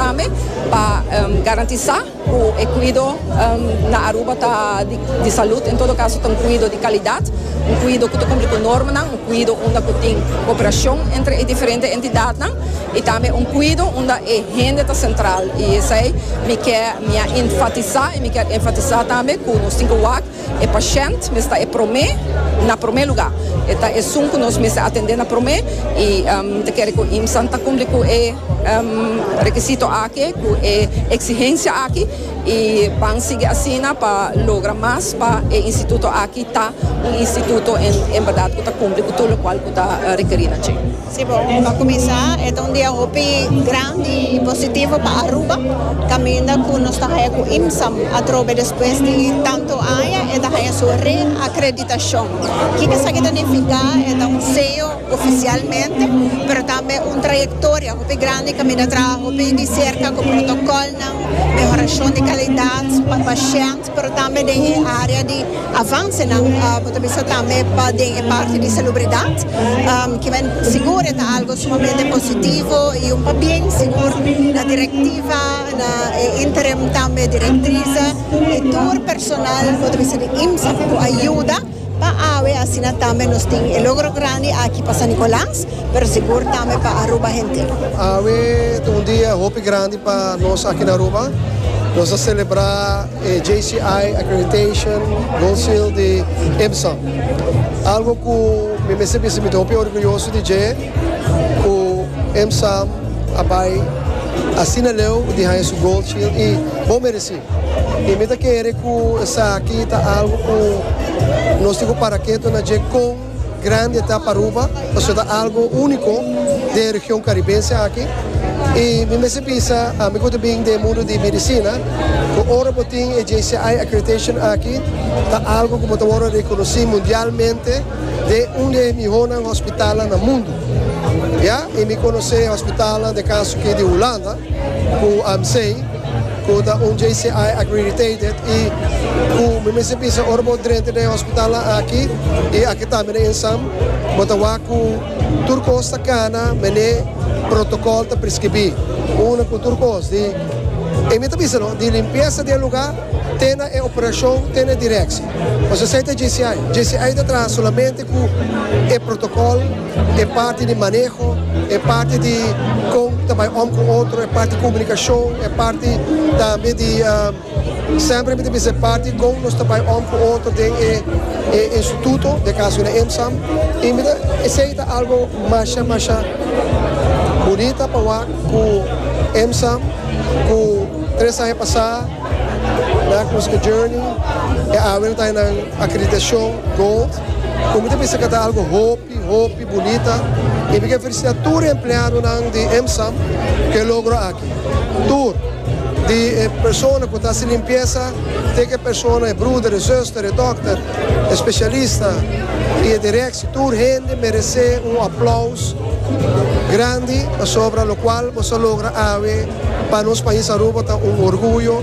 tambe pa garantisa cu e cuido na Aruba ta di salud, en todo caso ta un cuido di calidad, un cuido cu ta cumpli cu normanan, un cuido unda cu tin cooperacion entre e diferente entidadnan y tambe un cuido unda e hende ta central y esai mi ke mi a enfatisa y mi kier enfatisa tambe cu nos tin cu wak E pashènt mes ta e promé, na promé lugá. E ta esun ku nos mester atendé na promé i mi ta kere ku IMSAN ta kumpli ku e rekisito aki, ku e eksihensia aki i ban sigui asina pa logra mas pa e instituto aki ta un instituto en bèrdat ku ta kumpli ku tur lokual ku ta rekerí na dje. Si bo ta kuminsá, e ta un dia hopi grandi i positivo pa Aruba, kaminda ku nos ta haña ku IMSAM atrobe despues di tantu aña e ta haña su reakreditashon. Kiko esaki ta nifiká? E ta un seyo ofisialmente, pero tambe un trayektoria hopi grandi kaminda traha hopi di serka ku protokòlnan, mehorashon di kalidat pa pashènt. Pero tambe den e area di avansenan bo ta bisa tambe pa den e parti di salubridat kimen sigur e ta algo sumamente positivo y un pabien sigur na directiva na e interim tambe directrice y tur personal bo ta bisa di IMSA pa bo ayuda. Pa awe asina tambe nos tin e logro grandi aki pa San Nicolas, pero sigur tambe pa Aruba henter. Awe ta un dia hopi grandi pa nos aki na Aruba. Nos a celebra e JCI Accreditation Gold Seal di IMSA. Algo cu mi mester bisa mi ta hopi orguyoso di dje cu IMSA a bay asina leu di haya su Gold Seal y bo mereci. I mi ta kere ku esaki ta algu ku nos tin ku para ketu na dje kon grandi e ta pa Aruba, pasobra ta algu úniko den e region karibense aki. I mi mester bisa ami ku ta bin den e mundu di medisina ku ora bo tin e JCI accreditation aki ta algu ku bo ta wòrdu rekonosí mundialmente den un di e mihónan hospitalnan na mundu. Ya i mi konosé hospitalnan den kaso aki di Hulanda ku AMC. Cu ta un JCI accreditated y cu mi mester bisa ora bo drenta den e hospitalnan aki y aki tambe den Insam bo ta wak cu tur cos ta cana mene protocol ta prescribi. Una cu tur cos di e mi ta bisa no di limpieza di e lugar te na e operacion te na e direcci. Pues esey ta JCI. JCI ta traha solamente cu e protocol. E parti di maneho, e parti di kon ta bai om ku otro, e parti komunikashon, e parti tambe di semper mi ta bisa e parti kon nos ta bai om ku otro den e e instituto, den e kaso na IMSAM, i mi ta esei ta algo masha masha bunita pa wak ku IMSAM ku tres aña pasá nan a kominsa ku journey e awe nan ta haya nan akreditashon gold. Bo mi ta bisa kata algo hopi hopi bunita y mi ke felicita tur e empleadonan di EMSAM cu e logro aki. Tur, di e persona cu ta haci limpiesa te cu e persona e bruder e zuster e dokter e specialista y e directie tur hende merece un aplaus grandi pasobra locual bo sa logra awe pa nos pais Aruba ta un orguyo.